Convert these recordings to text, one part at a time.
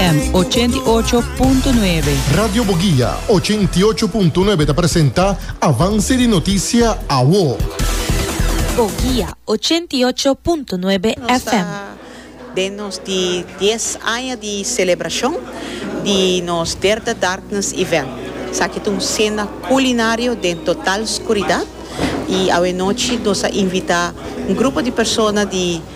FM ochenta i ocho punto nuebe. Radio Boguia ochenta i ocho punto nuebe ta presenta Avance di Noticia Awo. Boguia ochenta i ocho punto nuebe FM. Den nos di dies aña di celebracion di nos Derde Darkness Event. Esaki ta un cena culinario den total scuridad y awe nochi nos a invita un grupo di persona di.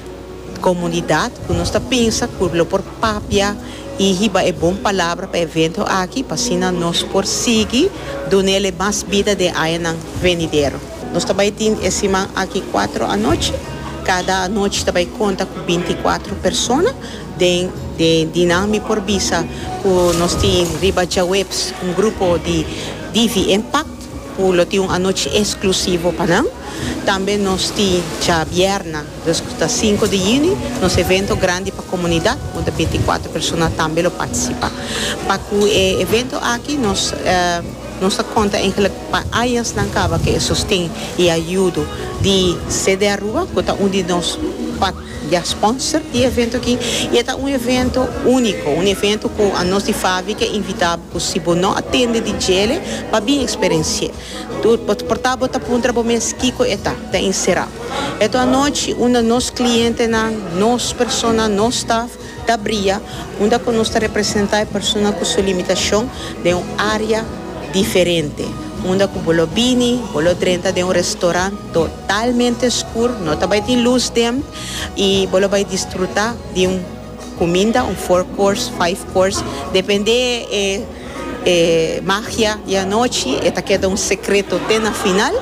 Komunidat ku nos ta pensa ku lo por papia i hiba e bon palabra pa evento aki pa asina nos por sigui duna el e mas bida den añanan venidero. Nos ta bai tin e siman aki kuatro anochi. Kada anochi ta bai konta ku binti kuatro persona. Den di nan mi por bisa ku nos tin riba djaweps un grupo di DV Impact. Cu lo tin un anochi exclusivo pa nan. Tambe nos tin djabièrna, dus cu ta sinku di juni, nos evento grandi pa comunidad, unda binticuatro persona tambe lo participa. Pa cu e evento aki nos nos ta conta eigenlijk pa añasnan caba cu e sosten y ayudo di CD Aruba, cu ta un di nos pat dja sponsor di evento aki. Y e ta un evento unico, un evento cu a nos di Favi ke invita. Cu si bo no a tende di djele, pa bin experenci'é. Tur, bo ta porta bo ta puntra bo mes kico e ta, ta encera. Eto anochi, unda nos clientenan, nos persona, nos staff, ta bria, unda cu nos ta representa e persona cu su limitacion den un area diferente, unda cu bo lo bini, bo lo drenta den un restaurant totalmente scur, no ta bay tin luz den, y bo lo bay disfruta di un. Cuminda, un four course, five course, depende e e magia di anochi, e ta keda un secreto te na final.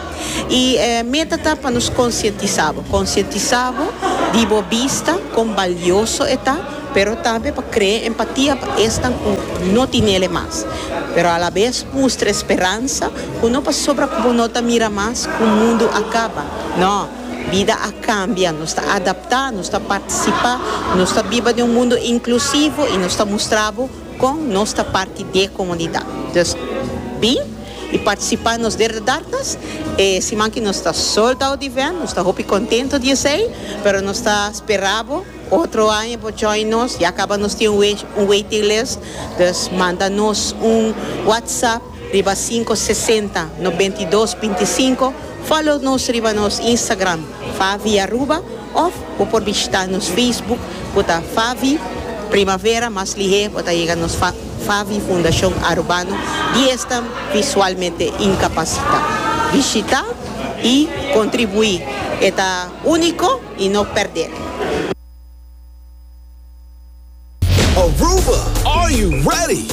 Y e meta ta pa nos concientisa bo, concientisa bo di bo bista con balioso e ta, pero tambe pa crea empatia pa esnan cu no tinele mas, pero a la vez mustra esperansa cu no pasobra cu bo no ta mira mas cu mundo a caba, no. Bida a kambia, nos ta adaptá, nos ta partisipá, nos ta biba den un mundu inklusivo i nos ta mustra bo kon nos ta parti di e komunidat. Dus, bin i partisipá en nos derdedartas. E siman ki nos ta sold out event, nos ta hopi kontentu di esei, pero nos ta spera bo otro aña por join nos. Ya kaba nos tin un waiting list, dus manda nos un whatsapp. Riba cinco sesenta nobentidos binticinco follow nos riba nos Instagram Favi Aruba of bo por bishita nos Facebook cu ta Favi Primavera mas lihé bo ta yega nos Favi Fundacion Arubano di esnan visualmente incapacita bishita y contribui e ta unico y no perdel. Aruba are you ready?